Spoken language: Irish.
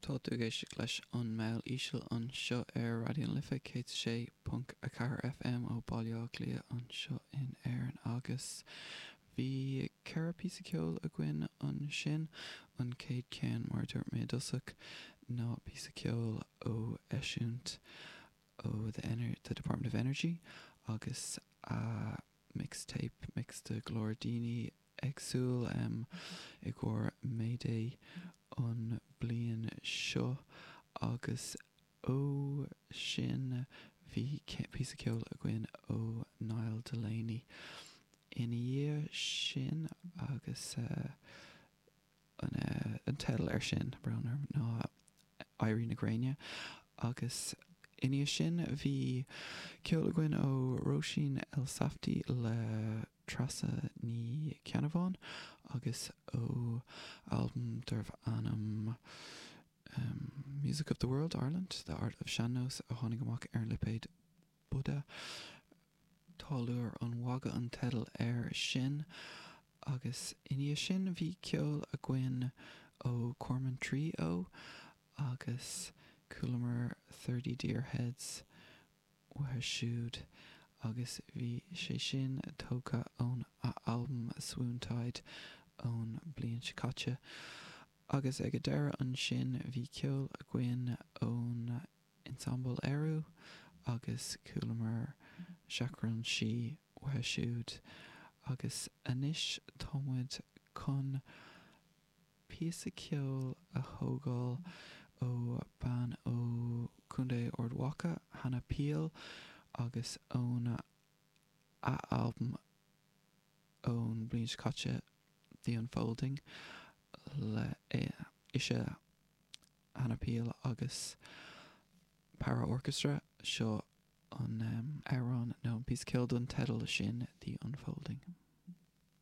Tá tú ag éisteacht leis An Meall Íseal anseo ar Raidió na Life 106.4 FM ó Bhaile Átha Cliath anseo in Éirinn agus bhí ceithre píosa ceoil againn ansin. An chéad cheann, mar a dúirt mé i dtosach, ná píosa ceoil ó eisiúint ó The Ener The Department of Energy agus a mixtape, mix de glór daoine, éagsúla am i gcomhair May Day an bliain seo agus ó sin bhí píosa ceoil againn ó Niall Delaney ina dhiaidh sin agus an teideal air sin, brón orm, ná Éirí na Gréine agus i ndiaidh sin bhí ceol againn ó Róisín Elsafty le Treasa Ní Cheannabháin agus ó albam darbh ainm Music of the World, Ireland, The Art of Sean-Nós a tháinig amach ar an lipéad. Buda. Táilliúir an Mhagaidh an teideal air sin. Agus i ndiaidh sin bhí ceol againn ó Cormorant Tree Oh agus chualamar Thirty Deer Heads uatha siúd agus bhí sé sin tógtha óna albam Swoontide ón bliain seo caite. Agus ag a deireadh ansin bhí ceol againn ó na Ensemble Ériu agus chualamar Seachrán Sí uatha siúd. Agus anois támuid chun píosa ceoil a thógáil ó bean ó Chontae Ard Mhacha, Hannah Peel, agus óna albam ón bliain seo caite The Unfolding le sea. Hannah Peel agus Paraorchestra, seo an amhrán nó an píosa ceoil don teideal sin The Unfolding.